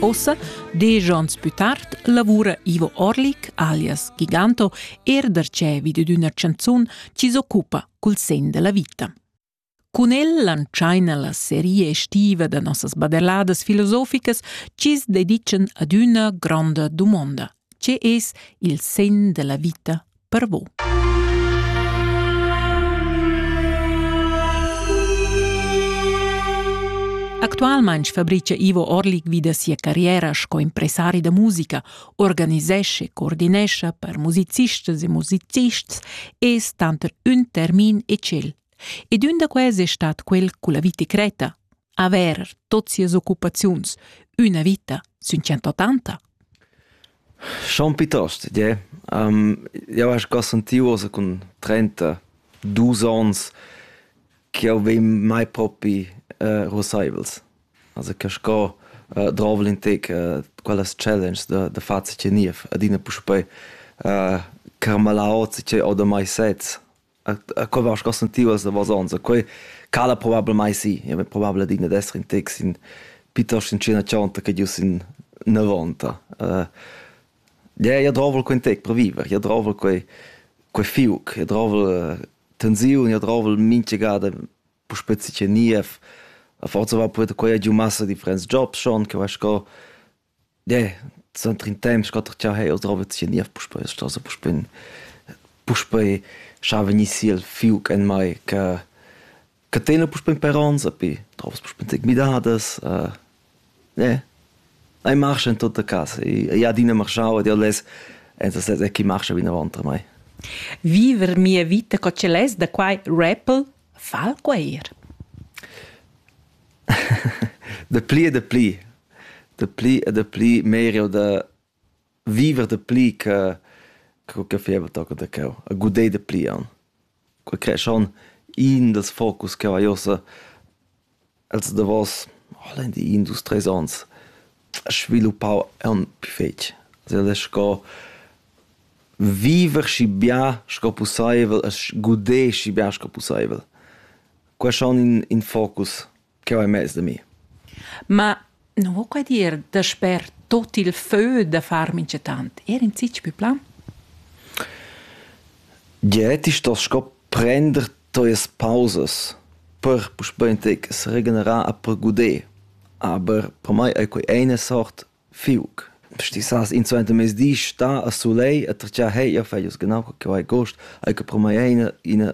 Ossa, diesch onns pü tard, lavura Ivo Orlik, alias Giganto, er darcevi dad üna chanzun chi s'occupa cul sen della vita. Cun el lantschaina la seria estiva da nossas baderladas filosoficas chi's dedican ad üna gronda dumonda. Che es il sen della vita per vus. Actualmain fabricia Ivo Orlik vi da sia carriera sco impresari da musica, organisesce, coordinescha per musicistas e musicists e tanter ün termin e tschel. Ed ün da quels è stat quel con la vita creta, aver tot sias occupaziuns, üna vita sün 180? Schon piuttost, yeah. Um, jau hai sco sentiu ossa cun trenta-dus ons ch'jau vegn mai propi uh, ruassaivels. Also che sco uh, drovel in tec uh, quellas challenges da, da far ce niev adina puspei uh, carmalar ozza che ho da mai sez. a co vas cos sentivas da vasons a quei cala probablmai sì ja probabel digna d'esser in tex in pitost in cena chonta che gius in 90 uh, ja ja drovel quei tec per viver ja drovel quei quei fiuc ja drovel tensiun ja drovel minchegada pu spezi che niev a forza va poet quei giu massa differents jobs schon che vas co Ne, suenter in temps quatter gia hai jau trova sia niev puspei la stasa puspei puspei schar vegnir si el fiug en mai che che tena puspei per onns epi trovas puspei tec midadas uh, ne ei marcha en tutta casa e ei adina marschau ed jau less entastes è chi marcha vinavant a mai. Viver mia vita co ce less da quai rappel fa quei ir. Dapli e dapli, dapli e dapli meglio da viver dapli che co che feva toca da cheu, a guder dapli aunc. Quei crea schon in dals focus ch'jeu hai ussa els davos oh, lein dir in dus treis onns sviluppau aunc pli fetg. Also el è sco viver schi bia sco pusseivel e guder schi bia sco pusseivel. Qua schon in, in focus che ho emez da mi. Ma non ho qua dir da sper tot il fö da far minchatant. Er in zich più plan? Ja, ti stos sco prender tuas pausas per puspei tec regenerar a per guder. Aber per mai è quei eine sort fiuc. Sti sas in zweite mes di sta a sulei a trcia hei ja feius genau che vai gost ai che per mai eine eine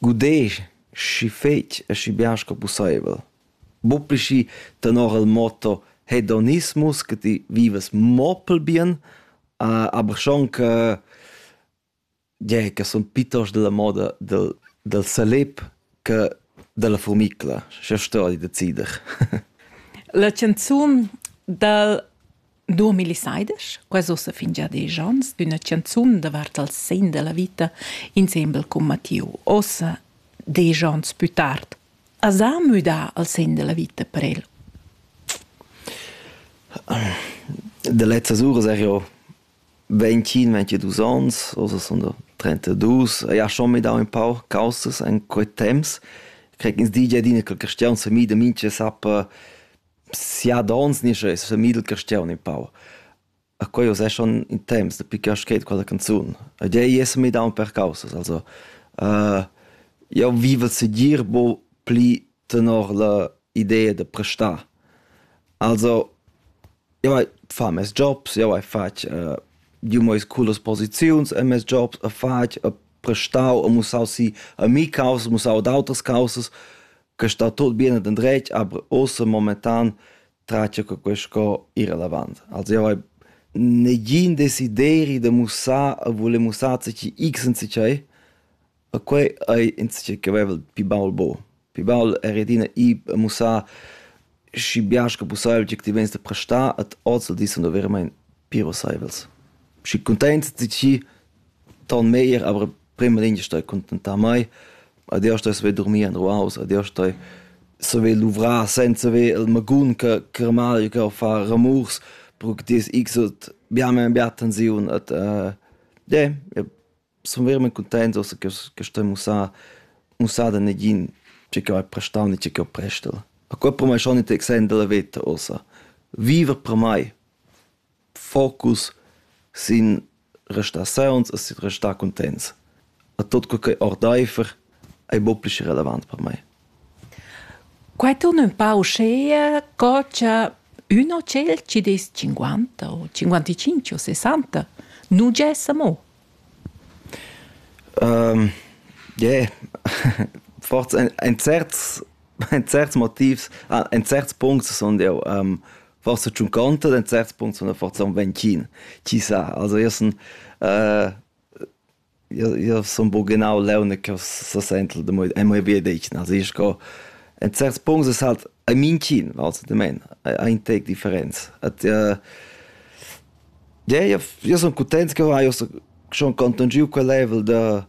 Gudesch schi fetg e schi bien sco pusseivel. Buca schi tenor il motto hedonismus che ti vivas mo pel bien, aber schon che gie che sun piuttost dalla moda del del salip che dalla furmicla. Scha sto ei decider. La canzun dal 2016, quasi ussa fin già diesch onns, üna chanzun davart il segn da la vita insembel cun Mattiu. Ossa, diesch onns pü tard, as ha müdà al segn da la vita per el? De letztes Uhr sag ja 25, 22 ans, also sind da 32. Ich habe schon mit auch ein paar Kausses in quei temps. Ich krieg ins DJ dine qualche Stern für mich, damit ich habe siadons nischa es sa midel castiaun in pau. A quei us è schon in temps dapi che ho scrit quella canzun. Ed ei es mi daun per causas, also uh, io vivo segir bo pli tenor la idea da prestar. Also io vai fa mes jobs, io vai fatg uh, giu meis culas posiziuns a mes jobs, a fatg, a prestau, a mussau si a mi causas, mussau ad auters causas. che sta tot bien ed endretg, aber ossa momentan tracia che quest co ir avant. Also io hai negin desideri da mussar a voler mussar zichi x in zichai, a quei ei in zichai che vevel pi baul bo. Pi baul er adina i a mussar schi biasch che pussaivel tgi ti vegns da prestar ed oz dis sun veramein pi rosaivels. Schi cuntaints zichi ton meglier, aber prima lingia stai contentar mei, adeus stai saver durmir en ruaus, adeus stai saver luvrar senza haver il magun che germanic che fa ramurs, perché ti es xot bia meir bia tensiun et uh, yeah, sun verament cuntents ossa che, che stai mussà, mussà da negin tge che vai prestau ni tge che ho prestel. A quel per mei schon interessant della veta ossa. Viver per mei. focus sin restar sauns e sin restar cuntents. A tot quel che ordaifer ei mo pli relevant per mei. Quai torna un pau scea, co c'è un hotel ci des 50 o 55 o 60, non c'è mo. Um, yeah. Forse ein, ein certs ein certs Motivs, ah, ein certs Punkte sind ja ähm, forsa tschunconta den certs punts von der forza un vencin chi sa also io sun äh, io io sun bo genau leune che so sentel de moi e moi vie deicen also ich go en certs punts es halt ein mincin also de men ein tec differenz at äh, ja io io sun contents che io so schon contungiu quel level de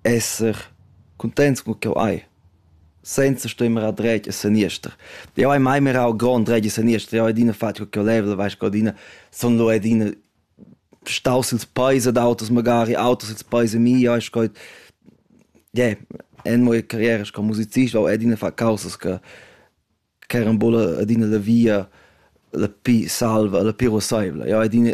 esser cuntents cun ch'eu hai, senza støi mirar dretg e seniester. Eu hai mai mirau grond dretg e seniester, eu hai adina fatg co ch'eu leva, vais co adina sun lò adina staus ils peis ad auters magari, auters ils peis a mi, eu hai sco yeah, in mia carriera sco musicist ho adina fat causas che ch'eran buca adina la via la pi salva, la pi ruosseivla. Eu hai adina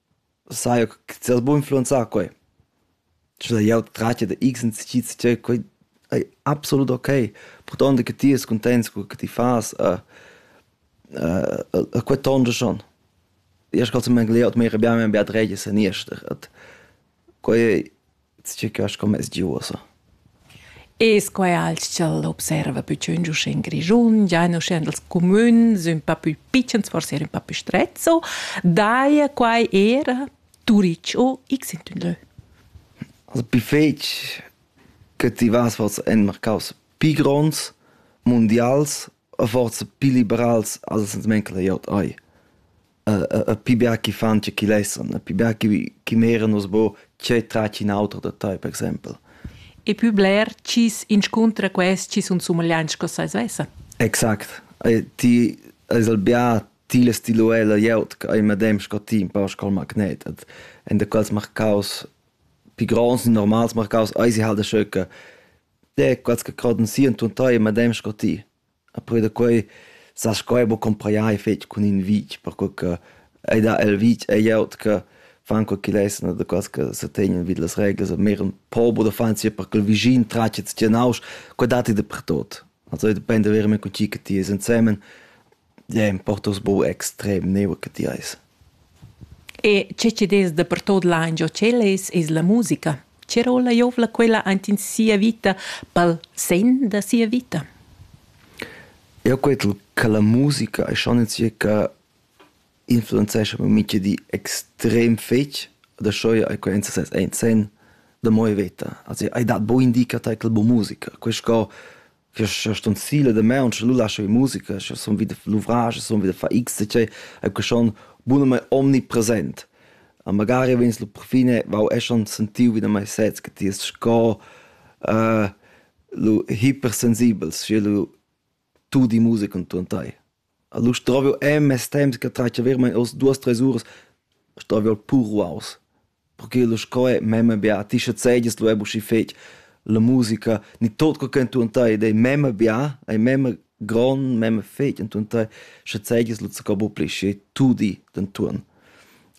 Sai co che ti has buc influenzà quei. Sche sai jeu tratga da x incisids tgei quei ei absolut okay, purtond che ti es cuntents co che ti fas e e quei tonscha schon. Io sco semmegliaut mi arrabia mir bia dretg e seniester. Quai ei circa sco mes di uossa. E sco è alt ch'el observa pü tschünd uschè in Grischun, giain uschè in dals cumüns ün pa pü pitschens, forse er ün pa pü strezzo, daja quai eir Turic o X in tün lö. Also pü fetg che ti vas forsa en marcaus pü gronds, mundials, o forsa pü liberals als ans manca la glieud oi. pi bia chi fan che chi lessan, pi bia chi chi meran nus bo tgei tratg in auter da tai, per exempel. E pü bler chi's inscuntra quels chi sun sumagliants sco seis vessan. Exact. ti ais al bia tila stiluella glieud ch'ei medem sco ti un pau sco il magnet. Et in da quels marcaus pi gronds, i normals marcaus, eisi halt scheu che de quels che croden si und tun tai medem sco ti. E poi da quei sas sco ei buca cumpreiai fetg cun in vitg, perquei che ei dat el vitg e glieud che fan quei ch'igl essen oder quels che setegnan vid las reglas, aber mehr ein Pober oder fan sich per ch'il vischin tratget sia nausch, quei dat ei dapertut. Also depende veramein co tgi che ti es ensemen, ja, importa buca extrem, neu che ti eis. E che chi'd es dapertuot laingiò tschel es, es la musica. Che rolla giovla quella aint in sia vita, pel sen da sia vita? Eu cret cha la musica e schon in circa influenzescha per mincha di extrem fetg. Dascho eir quainza sez aint sen da moi veta. Also, ai dat bo indica tar quel bo musica. Quist co scha stun sila da maun scha nu lascho ir musica scha sun vi da luvrage sun vi da far x e cioè e que schon bunamaing omnipresent a magari vegns la perfine vau e schon sentiu wieder mei sez che ti est sco lu hipersensibels sche lu tudi musica und tu an tai Alura stroviu en mes temps che tratgia veramein oz duas treis uras, stroviu pur ruaus, perche lu sco è memma bia a ti schazegias lu ebu schi fetg la musica, ni tot co che entuorn tei ed ei memma bia, ei memma gron, memma fetg entuorn tei, schazegias lu zaccau buca pli schi tu di d'entuorn.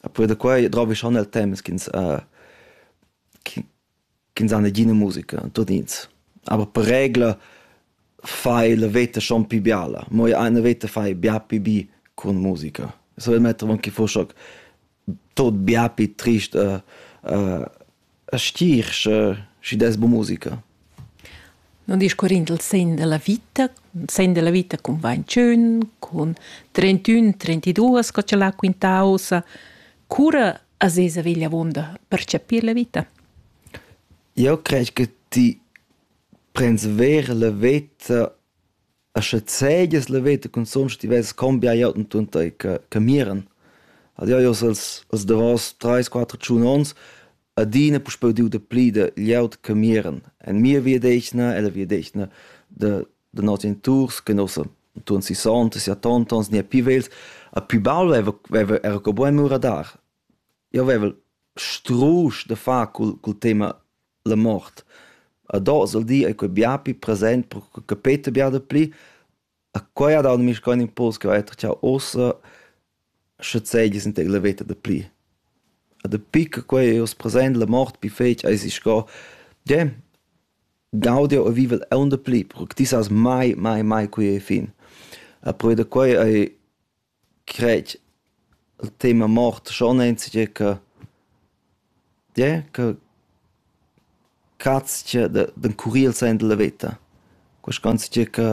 E poi da quei drovi schon el temps ch'ins ch'ins ha negina musica, tudins. Aber per regla fai la veta schon pi biala. Mo eine veta fai bia pi bi cun musica. Es ho il metter avon che foss hoc tot bia pi trist e stir sche schi des bu musica. Non discorrind il sen della vita, sen della vita cun 21, cun 31, 32, sco ce l'ha quintausa, cura a sesa vegl avunda per chapir la vita? Eu crej che ti prends ver la veta a sche zegias la veta consum sche ti vess combia jau und und tai che che miran. Ad jau jos als als davos trais, quatter, tschun ons adina puspeu diu da pli da glieud che miran. En mia via d'eschna, ella via d'eschna, da da noss geniturs che nossa untuon sissonta, sia tonta, ons gnia pii vegls, a pii baul veva, veva era co buca mura dar. Io vevel strusch da far cul, cul tema la mort. A dos al di ei quei bia pii present, pro che capeta bia da pli. A quei ha dau mischcoin impuls che ho etter ciao ossa Sche seigis in tec la veta dapli. E dapi che quei ei oz present, la mort pli fetg eisi sco, gie, gaudiu jeu e vivel aunc dapli, perche ti sas mai, mai, mai quei ei fin. E perquei da quei ei, cret, il tema mort schon enzatgei che Tgè ch'eu catscha d'encurrir sainza la veta, quaischonzcha che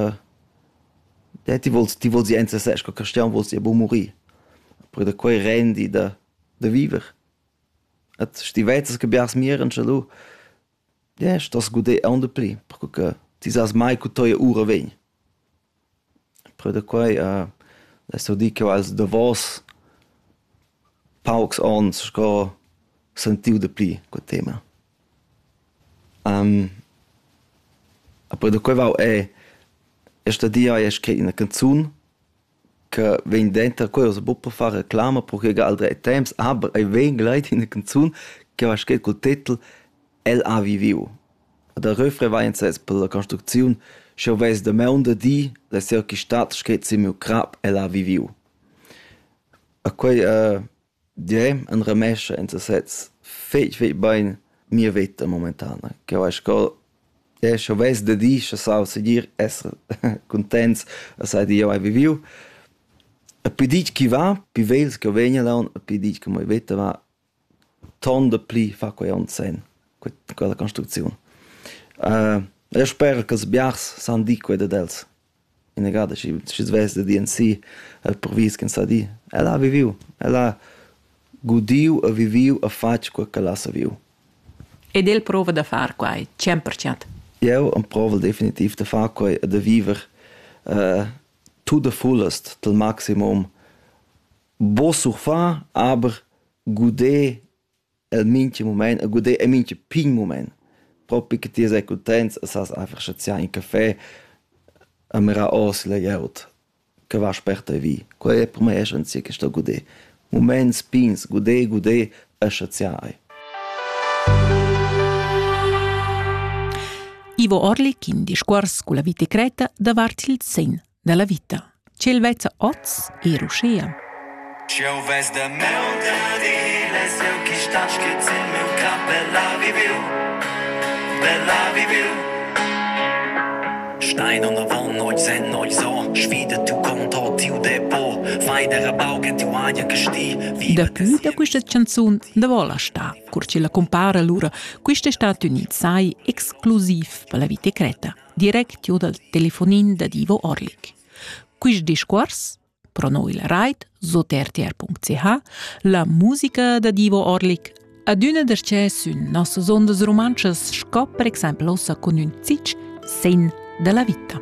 tè ti vols ti vols ir ensasez cun Cristian, vols ir a bun murir. Oppür da quai rendi da da viver. Ed sch'ti vezzas che biars mieran scha lu tgè stos guder auncha pli, perche che ti sast mai co toia oura vegn. Pür da quai ha es sto dir ch'eu ha'ls davos paucs ons sco sentiu daplü co tema. a pür da quai vau e e sta dir eir scrit üna canzun che vegn denter quella s'po po far reclama pro chi ha gal drei temps, aber ei vegn gleiti üna canzun che va scrit cul titel El ha viviu ad el refrevainses per la construcziun, sch'jeu vess damaun da dir la seuquistad schet sin miu crap, el ha viviu. E quei uh, direi in remess en sesez fetg, fetg bein mia veta momentana. Ch'jeu hai sco, eh, sch'jeu vess da dir, sche sau segir esser cuntents a sai dir, jeu hai viviu. E pi ditg chi va, pi vegls ch'jeu vegn laun, e pi ditg che mia veta va, Tonda pli fa quei onn senn, que- quella construcziun. e sper ch'ils biars san dir quei dad els, inagada schi schi svess da dir ensì, el provis ch'ins sa dir. El ha viviu, el ha gudiu e viviu e fatg quei ch'el ha saviu. Ed el prova da far quai cent per cent. Jeu emprovel definitiv da far quei e da viver tut a fullast, til maximum Bo surfar aber guder el mincha mumaint e guder in mincha pign mumaint. Propi che ti sei cuntents e sas einfach chaziar in café e mirar ors la glieud che va sperta vi. Quella è per mei essenzia che sto guder. Mumaints pigns, guder, guder e chaziar ei. Ivo Orlik in discuors culla vita cretta davart il sen dalla vita. Ch'el vezza oz er uschia. Eu vez da meu dadiles, eu chi stat schiz in meu cap, bella viviu, bella viviu. Stein unter Wand, oi sen, oi so, schwide tu conto tiu depot, fai der baugen tiu aia gestil. Daplü da questa canzun da vola sta, cur ci la compara lura, questa Stati Unit sai exclusiv per la vita creta. directur dal telefonin da Divo Orlik. Quist discuors, pro noi la rait, sot rtr.ch, la musica da Divo Orlik, adüna darchè sün nossas ondas rumantschas sco per exaimpel ossa cun ün zitsch sen da la vita.